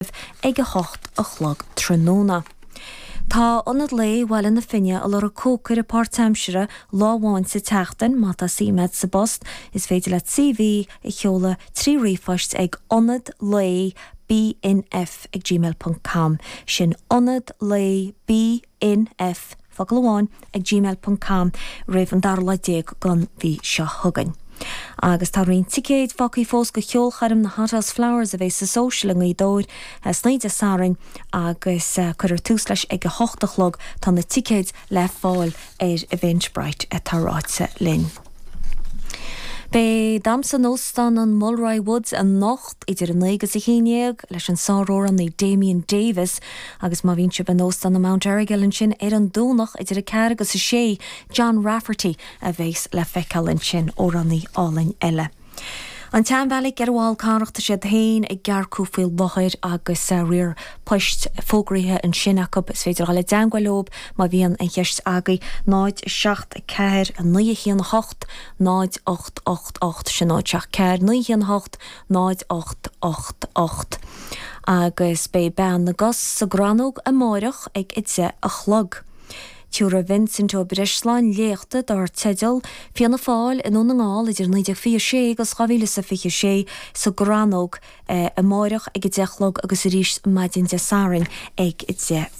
fuinnimh ag 8 a chlog tráthnóna. Tá Ionad Lae Bhaile na Finne ag lorg cócaire páirtaimsire lá amháin sa tseachtain, má tá suim agat sa bpost is féidir leat CV a sheoladh trí ríomhphost ag ionadlaebnf@gmail.com, sin ionadlaeb. nf focal amháin ag gmail ponc com roimh an dara lá déag den mhí seo chugainn. Agus tá roinnt ticéid fágthaí fós go cheolchoirm na Hothouse Flowers a bheidh sa Social i nGaoth Dobhair san oíche Dé Sathairn agus cuirfear tús leis ag a hocht a chlog. Tá na ticéid le fáil ar Eventbrite atá ráite linn. Beidh Damhsa in Óstán an Mulroy Woods anocht. idir 9 agus 11, leis an sáramhránaí Damien Davis, agus má bhíonn sibh in Óstán an Mount Errigal ansin ar an Domhnach idir 4 agus 6, John Rafferty a bheas le feiceáil ansin, amhránaí álainn eile. An tSeanbheairic ar an bhFál Carrach, tá siad féin ag earcú faoi láthair agus riar poist fógraithe ansin acu, is féidir a dhul i dteangmháil leo má bhíonn aon cheist agaibh, 0749180888, sin 074918. 0888 agus beidh Bean na gCos sa gCrannóg amáireach ag 10 a chlog. Tabharfaidh Vincent Ó Breisleáin léachta dar teideal 'Fianna Fáil i nDún na nGall idir 1926 agus 2026' sa gCrannóg amáireach ag 10 a chlog agus arís maidin Dé Sathairn ag 10.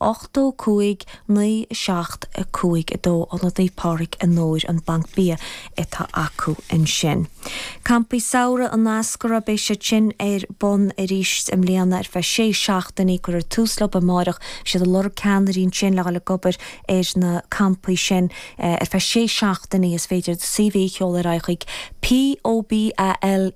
85 9 7 5 2 Ionad Naomh Pádraig i nDobhar, an banc bia atá acu ansin. Campaí Samhraidh an Eascarraigh Beidh siad sin ar bun arís i mbliana ar feadh sé seachtainí. Cuirfear tús leob amáireach. Beidh siad ag lorg ceannairí ansin le dhul ag obair ar na campaí sin ar feadh sé seachtainí. Is féidir do CV a sheoladh ar aghaidh chuig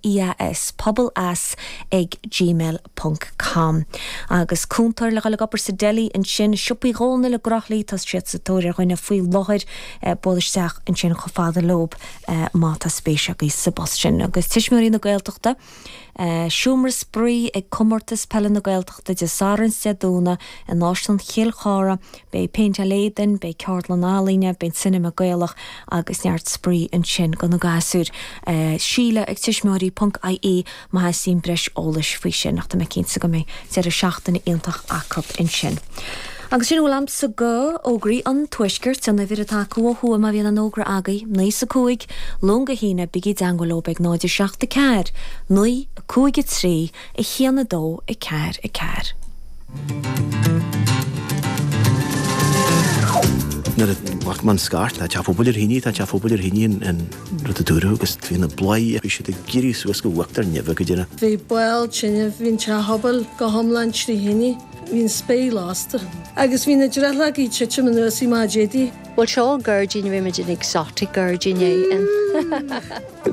POBALEAS, pobal eas ag gmail. ponc com Agus cúntóir le dhul ag obair sa deli ansin, Siopa Uí Dhónaill i gCroithlí, tá siad sa tóir ar dhuine faoi láthair, buail isteach ansin chomh fada leob má tá spéis agaibh sa bpost sin. Agus Tuismitheoirí na Gaeltachta, seomra spraoi ag Comórtas Peile na Gaeltachta Dé Sathairn 's Dé Domhnaigh in Áislann Chill Chártha, beidh péinteáil éadain, beidh Ceardlann Ealaíne, beidh Cinema Gaelach agus neart spraoi ansin go na gasúir. Síle ag tuismitheoirí ponc ie. Má theastaíonn breis eolais faoi sin ach tá mé cinnte go mbeidh deireadh seachtaine iontach acu ansin. Agus sin a bhfuil agamsa go fhógraí an Tuaiscirt, an uimhir atá acu ó thuaidh má bhíonn aon fhógra agaibh, naoi is a cúig, Luan go hAoine, bígí i dteangmháil leob ag 0, 7, 4, 9, 5, 3, 1, 2, 4, 4. Nuair a bhí an scairt, tá teach an phobail ar thine, tá teach an phobail ar thine in. rud a dúradh agus bhí na bladhairí a bhí siad ag iarraidh suas go uachtar neimhe go deireadh. Bhí baol tine, bhí an teach pobail go hiomlán trí thine, bhí an spéir lasta agus bhí na drithleogaí ag titim anuas i do chuid éadaí. Bhuel, seo gairdín, rinne muid an exotic gairdín é.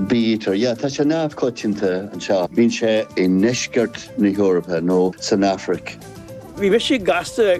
Bítear, yeah, tá sé neamhchoitianta anseo. Bíonn sé i ndeisceart na hEorpa nó san Afraic. Bhí mise gasta.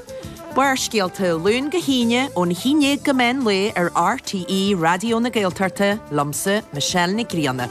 Barrscéalta, Luan go hAoine, ón haon déag go meán lae ar RTÉ Raidió na Gaeltachta, liomsa, Michelle Nic Grianna.